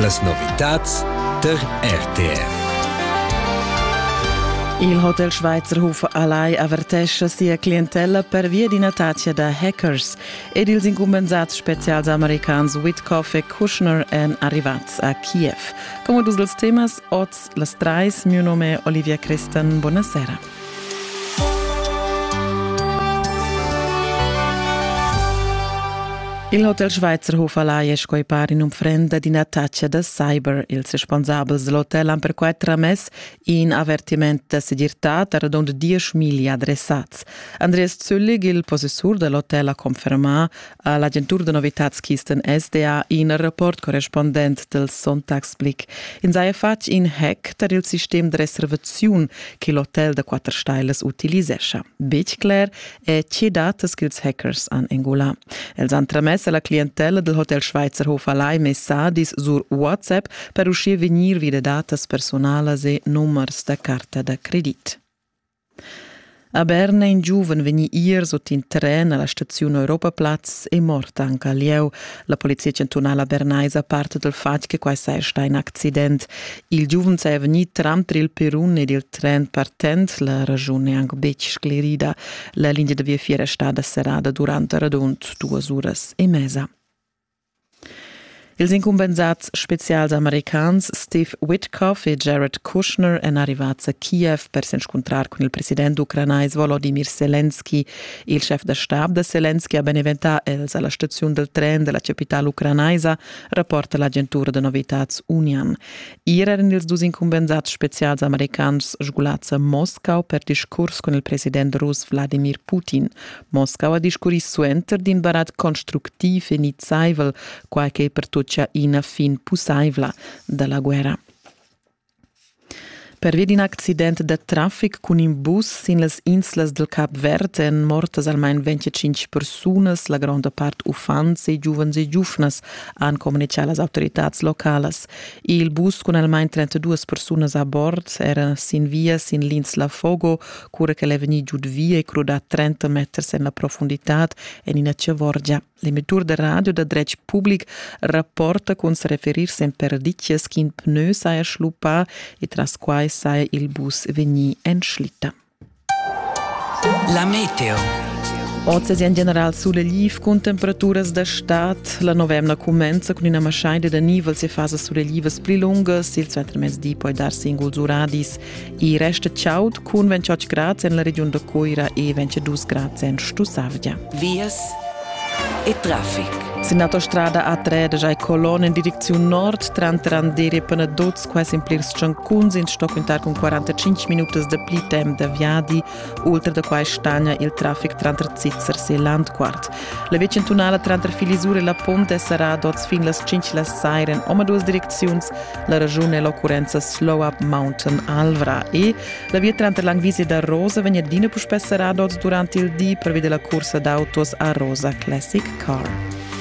Las novitads der RTR. Il Hotel Schweizerhof Alai avertescha sia clientella pervia d'ina tazia da hackers ed ils incumbensats spezials americans Whitcoff e Kushner èn arrivads a Kiev. Come dus els temas oz Las trais, miu nom è Olivia Christen, buonasera. Il Hotel Schweizerhof alai è sco par in unfrenda d'ina taccia da cyber. Ils responsabels del hotel han perquai tramess in avertiment da segirtà da radund diesch miglia adressats. Andreas Züllig, il possessur dell'hotel, ha confermà a l'agentur da novitads Kisten SDA in rapport correspondent del Sonntagsblick. Ins haja fatg in hack tar il sistem da reservaziun che l'hotel da quatter stailas utilisescha. Betg cler è tge datas ch'ils hackers han engulà. Els han tramess a la clientella del Hotel Schweizer Hof Alai messadis sur WhatsApp per uschia vegnir vi da datas personalas e numers da carta da credit. A Berna è in giuven vegnì ier sut in tren a la staziun Europaplatz e mort anc a lieu. La polizia chantunala bernaisa parta dal fatg che quai saja stà in accident. Il giuven saja vegnì tranter il perun ed il tren partent. La raschun è anc betg sclerida. La linea da viafier è stada serrada durant radund duas uras e mesa. Ils incumbensats spezials americans Steve Witkoff e Jared Kushner èn arrivads a Kiev per s'inscuntrar cun il president ucranais Volodymyr Selenski. Il schef da stab da Selenski ha beneventà els a la staziun dal tren da la chapitala ucranaisa, rapporta l'agentura da novitads Unian. Ier eran ils dus incumbensats spezials americans sgulads a Moscau per discurs cun il president rus Vladimir Putin. Moskau ha discurri suenter d'in barat constructiv e nizzaivel, quai che pertutgia ina fin pussaivla da la guerra. Pervi d'in accident da traffic cun in bus sin las inslas del Cap Verd èn mortas almain 25 persunas, la gronda part uffants e giuvens e giuvnas, han communitgà las autoritads localas. Il bus cun almain 32 persunas a bord era sin via sin l'insla Fogo, cura che è vegnì giud via e crudà 30 meters en la profonditad en ina ciavorgia. L'emettur da radio da dretg public rapporta cun sa referir sem perditgas ch'in pneu saja schluppà e tras quai saja il bus vegnì en schlitta. La meteo. Oz è in general sulegl cun temperaturas da stad. La novemna cumenza cun ina maschaida da nivel se fasa suleglivas pli lungas. Il suentermezdi poi dar singuls uradis. I resta chaud cun 28 grad en la regiun da Coira e 22 grad en Stussavgia. Vias e traffic. Sin autostrada A3 da Jai Colon in direcziun nord tranter Andere e Panaduz, quasi in plirs tschancuns, in stoc cuntar cun 45 minutas da pli temp da viadi Ultra da quai stagna il traffic tranter Zizers e Landquart. La via chantunala tranter Filisur e la Pont è serrada oz fin las 5 la saira en omaduas direcziuns. La ragiun è l'occurrenza Slow Up Mountain Alvra e la via tranter Langwiese da Rosa vegn adina puspè serrada oz durant il di, prevede la cursa d'autos a Rosa Classic Car.